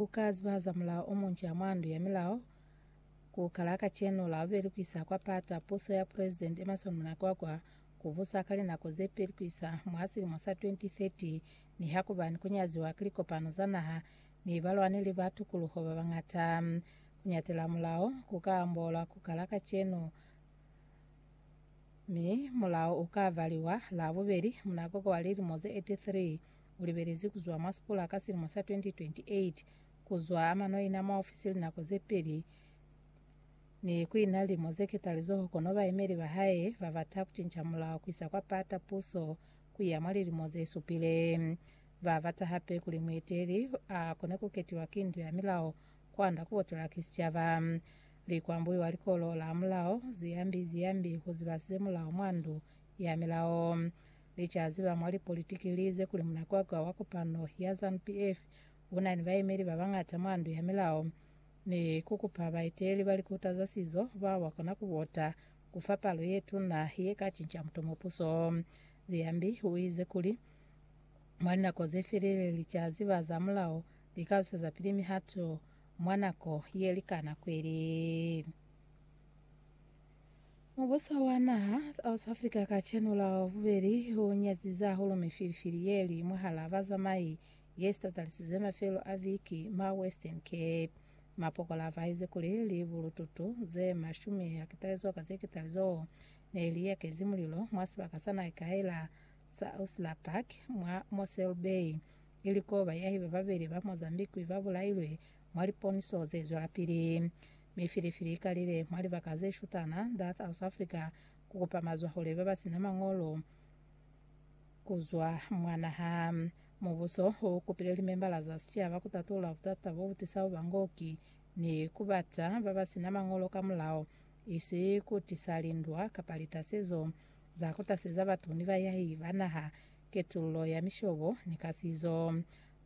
Ku ka zibahaza mulao o munca ha mwa Ndu ya Milao ku kala kacenu, Labobeli ku isa kwa Pata, puso ya Pulezidenti Emmerson Mnangagwa ku busa ka linako ze peli ku isa mwa silimo sa 2030, nihakuba ni ku nyaziwa ki likopano za naha ni balwaneli ba tukuluho ba bañata. Ku ñatela mulao ku ka amboolwa ku kala kacenu, mi mulao u ka valiwa Labobeli, Mnangagwa wa lilimo ze 83. ulibelezi kuzwa mwa sipula ka silimo sa 2028, kuzwa amano ina mwa ofisi linako zepeli, ni kuina lilimo zeketa lizoho kono baemeli bahae babata kucinca mulao kuisa kwa pata puso kuya mwa lilimo zesupile. Babata hape kuli mueteli akone kuketiwa ki ndu ya milao kwanda kubotela ki sicaba. Likwambuyu wa likolo la mulao, Ziyambi Ziyambi, uziba semulao mwa ndu ya milao. Licazi ba mwa lipolitiki li ize kuli munakwakwa wa kopano ya Zanu PF u na ni baemeli ba bañata mwa ndu ya milao ni ku kupa baeteleli ba likuta za sizo bao ba kona ku vota ku fa palo ye tuna ye ka cinca mutomo puso. Ziyambi u ize kuli, Mwa linako ze felile, licazi ba za mulao li ka zwezapili mihato mwa nako ye likana kweli. Mubuso wa naha South Africa kacenu la bubeli u nyazize hahulu mifilifili ye li mwahal'a bazamai ye sitatalisizwe mafelo a viki mwa Western Cape. Mapokola a fahezi kuli libulututu ze mashumi a ketalezo ka ze ketalezo ne li yakezi mulilo mwa sibaka sa naikaila sa Usla Park mwa Mossel Bay, ili ko bayahi ba babeli ba Mozambique ba bulailwe Mwa liponiso ze zwelapili, mi filifili ikalile mwa libaka ze shutana za South Africa ku kupa mazwahule ba ba sina mañolo ku zwa mwa naha. Mubuso u kupile limembala za sicaba ku tatula butata bo bu tisa bubangoki ni ku bata ba ba sina mañolo ka mulao, isi ku tisa lindwa kapa litasezo za ku taseza batu ni bayai ba naha, ketululo ya mishobo ni kasizo.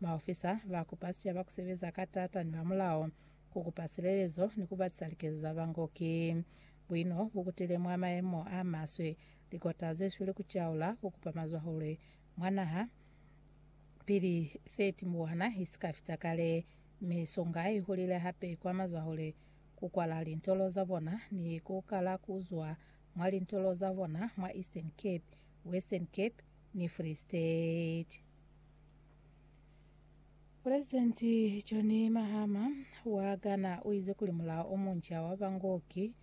Maofisa ba kupa sicaba ku sebeza ka taata ni bamulao, ku kupa silelezo ni ku batisa likezo za bango. Ki buino bu kutile mwa mayemo a maswe. Likota ze sweli ku caula, ku kupa mazwahule mwa naha pili 30 mbuwana i si ka fita kale. Misonga i hulile hape kwa mazwahule, ku kwala lintolo za bona ni ku kala ku zwa mwa lintolo za bona mwa Eastern Cape, Western Cape ni Free State. Pulezidenti John Mahama wa Ghana u ize kuli mulao o munca wa bangoki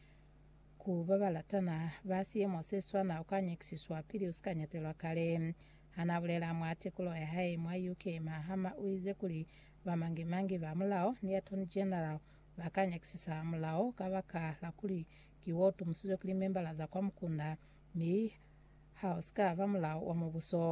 ku ba ba latana ba siemo se swana u ka nyakisiswa pili u si ka nyatelwa kale. Ha n'a bulela mwa tekulo ya hae mwa UK, Mahama u ize kuli bamangi-mangi ba mulao ni Attorney General ba ka nyakisisa mulao kabaka la kuli ki wo tumusizwe ki limembala za kwa mukunda Mi ha o si ka ba mulao wa Mubuso.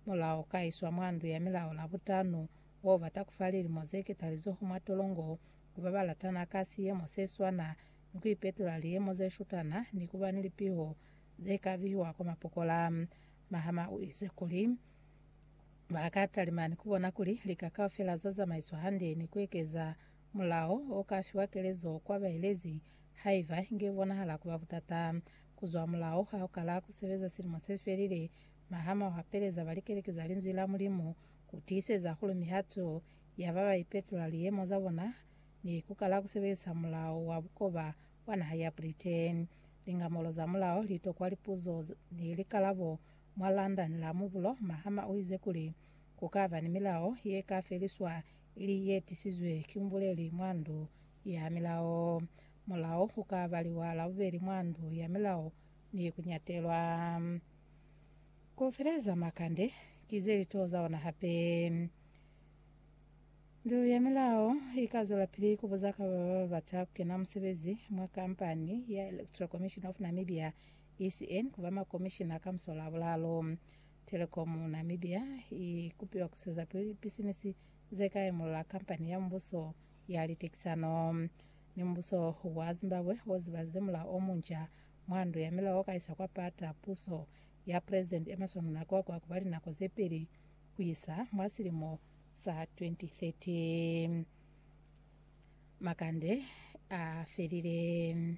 Mulao o ka iswa mwa ndu ya milao la butanu, wo bata ku fa lilimo ze ketalizoho mwa tolongo, ku ba ba latana ka siyemo se swana, ni ku ipetula liyemo ze shutana, ni ku ba ni lipiho ze ka bihiwa kwa mapokola. Mahama u ize kuli, Ba ka talima ni ku bona kuli lika kaufela za zamaiswa hande ni ku ekeza Mulao o ka fiwa kelezo kwa baelezi haiba inge i bonahala ku ba butata. Ku zwa mulao ha u kala ku sebeza silimo se felile, mahama u hapeleza ba likeleke za Linzwi la Mulimu ku tiiseza kuli mihato ya ba ba ipetola liyemo za bona ni ku kala ku sebelisa mulao wa bukoba wa naha ya Britain. Lingamulo za mulao li tokwa lipuzo ni likalabo mwa London la mubulo. Mahama u ize kuli, Ku ka ba ni milao ye ka feliswa ili ye tisizwe ki mubuleli mwa ndu ya milao. Mulao u ka baliwa la bubeli mwa ndu ya milao ni ku nyatelwa. Ku feleza makande ki ze li to za ona hape. Ndu ya milao i ka zwelapili ku buza ka ba ba bata ku kena musebezi mwa kampani ya Electoral Commission of Namibia, ECN, ku ba makomishina ka musola a bulaalu. Telecom Namibia i kupiwa ku swezapili pisinisi ze ka imulula kampani ya mubuso ya litekisano ni mubuso wa Zimbabwe o zibalize mulao o munca mwa ndu ya milao o ka isa kwa pata puso ya President Emmerson Mnangagwa ku ba linako ze pili ku isa mwa silimo sa 2030 makande a felile.